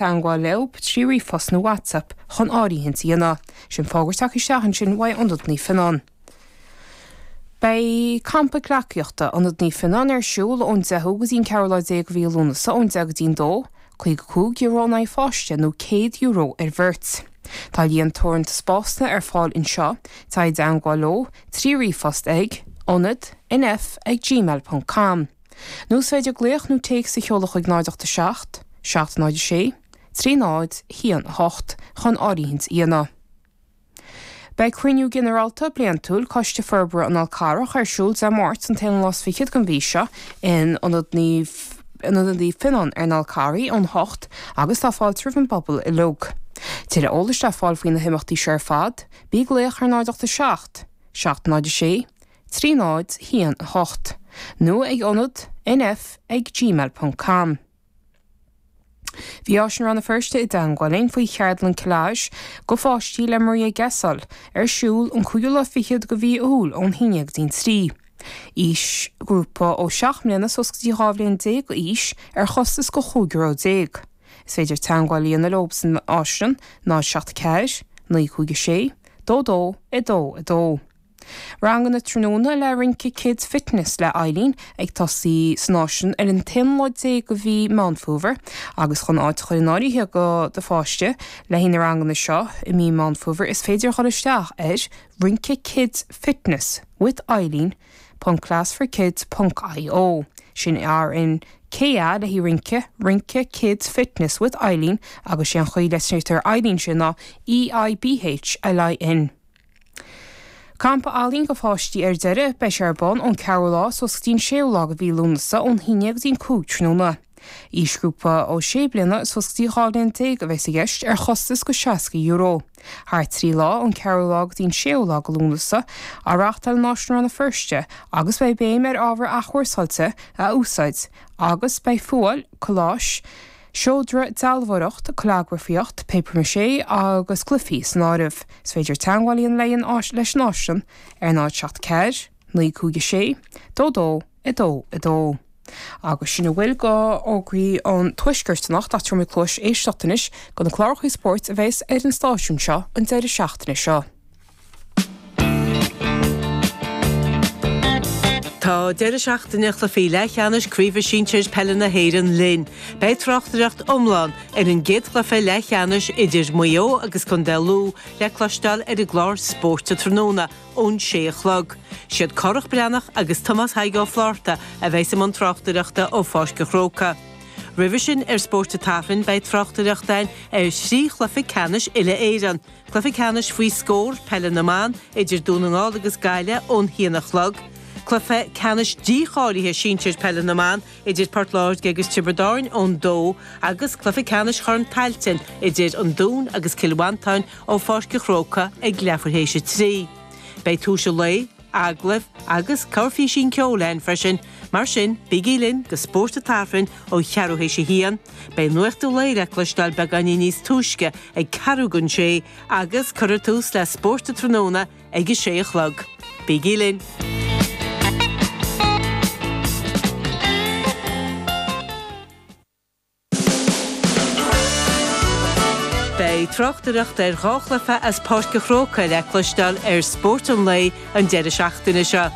teangmháil leo trí ríomhphost nó WhatsApp chun áirithint a dhéanamh. Sin fógra a tháinig isteach ansin ó Ionad Naomh Fionnán. Beidh Campa Gleacaíochta Ionad Naomh Fionnán ar siúl ón 10ú go dtí an 14 lá de mhí Lúnasa ón 10 go dtí an 2, €55 in aghaidh an pháiste nó €100 ar bheirt. Tá líon teoranta spásanna ar fáil anseo, téigh i dteangmháil leo trí ríomhphost ag, ionad, nf, ag, gmail, ponc, com. Nó is féidir glaoch nó téacs a sheoladh chuig 087 706 3018 chun áirithint a dhéanamh. Beidh Cruinniú Ginearálta Bliantúil Coiste Forbartha an Fháil Charraigh ar siúl Dé Máirt an 1 lá 's fichead den mhí seo in Ionad Naomh Fionnán ar an Fhál Carrach óna 8 agus tá fáilte roimh an bpobal uilig. Tuilleadh eolais le fáil faoi na himeachtaí seo ar fad, trí glaoch ar 087 706 trí náid a haon a hocht, nó ag ionad nf ag gmail ponc com. Bhí Áislann Rann na Feirste i dteagmháil linn faoi cheardlann collage do pháistí le Maria Gasol ar siúl an cúigiú lá fichead de mhí Iúil ón haon déag go dtí an trí. Aoisghrúpa ó seacht mbliana suas go dtí dhá bhliain déag d'aois ar chostas de chúig euro déag. Is féidir teagmháil a dhéanamh leo san Áislann, 074 956 22 22. Ranganna tráthnóna le Rince Kids Fitness le hEibhlín ag tosaí san Áislann ar an aonú lá déag de mhí Meán Fómhair agus chun áit a chur in áirithe do do pháiste le haghaidh na ranganna seo i mí Meán Fómhair is féidir a ghabháil isteach ar Rince Kids Fitness with Eibhlín ponc class for kids ponc io Sin R I N K A le haghaidh rince, Rince Kids Fitness with Eibhlín agus sé an chaoi a litrítear Eibhlín ansin ná EIBH, LIN. Campa ealaíon do pháistí ar deireadh. Beidh sé ar bun ón 4ú lá suas go dtí an 6ú lá de mhí Lúnasa, ón haon déag go dtí an 5 tráthnóna. Aoisghrúpa ó 6 bliana suas go dtí 12 bhliain a bheas i gceist, ar chostas de €60. Thar trí lá, ón 4ú lá go dtí an 6ú lá de Lúnasa, á reáchtáil in Áislann Rann na Feirste agus beidh béim ar ábhar athchúrsáilte a úsáid agus beidh fuáil, colláis, seodra, dealbhóireacht, callagrafaíocht, papier mâché agus cluifí san áireamh. Is féidir teagmháil a dhéanamh leis an Áislann ar 074 956 2222 agus sin a bhfuil d'fhógraí an Tuaiscirt anocht. Tabharfaidh muid cluas éisteacht anois do na cláracha spóirt a bheas ar an stáisiún seo an deireadh seachtaine seo. Tá deireadh seachtaine chluichí leathcheannais Craoibhe Sinsir Peile na hÉireann linn. Beidh tráchtaireacht iomlán ar an gcéad chluiche leathcheannais idir Maigh Eo agus contae Lú le cloisteáil ar an gclár Spórt an Tráthnóna ón sé a chlog. Siad Cárthach Breathnach agus Tomás Thaidhg Ó Flatharta a bheas i mbun tráchtaireachta ó Pháirc an Chrócaigh. Roimhe sin ar Spórt an tSathairn beidh tráchtaireacht ann ar thrí chluiche ceannais uile-Éireann, Cluiche ceannais faoi scór, Peile na mBan, idir Dún na nGall agus Gaillimh ón haon a chlog. Cluiche ceannais dícháilithe sinsir Peile na mBan idir Port Láirge agus Tiobraid Árainn ón 2 agus cluiche ceannais Chorn Tailteann idir an Dún agus Cill Mhantáin ó Pháirc a' Chrócaigh ag leathuair théis a 3. Beidh túis a lae. agallaimh agus corrphísín ceoil ann freisin, mar sin bígí linn go Spórt an tSathairn ó cheathrú théis a haon. Beidh Nuacht an Lae le cloisteáil beagáinín níos túisce ag ceathrú don sé agus cuirfear tús le Spórt an Tráthnóna ag a sé a chlog. Bígí linn. Beidh tráchtaireacht ar dhá chluiche as Páirc a' Chrócaigh le cloisteáil ar Spórt an Lae an deireadh seachtaine seo.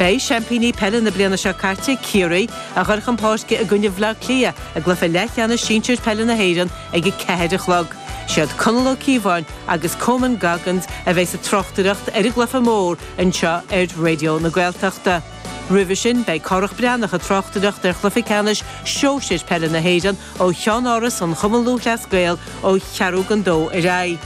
Beidh seaimpíní peile na bliana seo caite, Ciarraí, ag goil chun páirce i gcoinne Bhleá Cliath i gcluiche leathcheannais sinsir peile na hÉireann ag a ceathair a chlog. Siad Conall Ó Cíobháin agus Coman Goggins a bheas ag tráchtaireacht ar an gcluiche mór anseo ar Raidió na Gaeltachta. Roimhe sin, beidh Cárthach Breathnach ag tráchtaireacht ar chluiche ceannais Shóisir Peile na hÉireann ó Cheannáras an Chumainn Lúthchleas Gael ó cheathrú don dó ar aghaidh.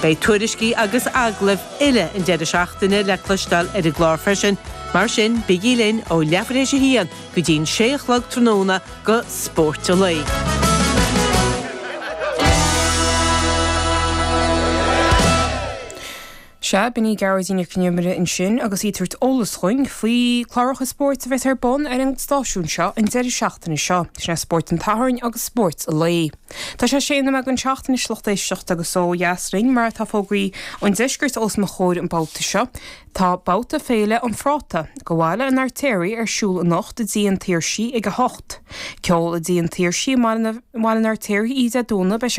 Beidh tuairiscí agus agallaimh uile an deireadh seachtaine le cloisteáil ar an gclár freisin, mar sin bígí linn ó leathuair théis a haon go dtí an sé a chlog tráthnóna go Spórt an Lae. Sea, b'in í Gearóidín Nic an Iomaire ansin agus í ag tabhairt eolas dhúinn faoi cláracha spóirt a bheas ar bun ar an stáisiún seo an deireadh seachtaine seo, sin é Spórt an tSathairn agus Spórt an Lae. Tá sé sé nóiméad don seacht anois lucht éisteachta agus ó dheas linn mar atá fógraí an deiscirt os mo chomhair an babhta seo, tá babhta Féile an Phráta, do Bhaile an Fheirtéaraigh ar siúl anocht i dTigh an tSaorsaigh ag a hocht. Ceol i dTigh an tSaorsaigh i mBaile an Fheirtéaraigh oíche Dé Domhnaigh, beidh sé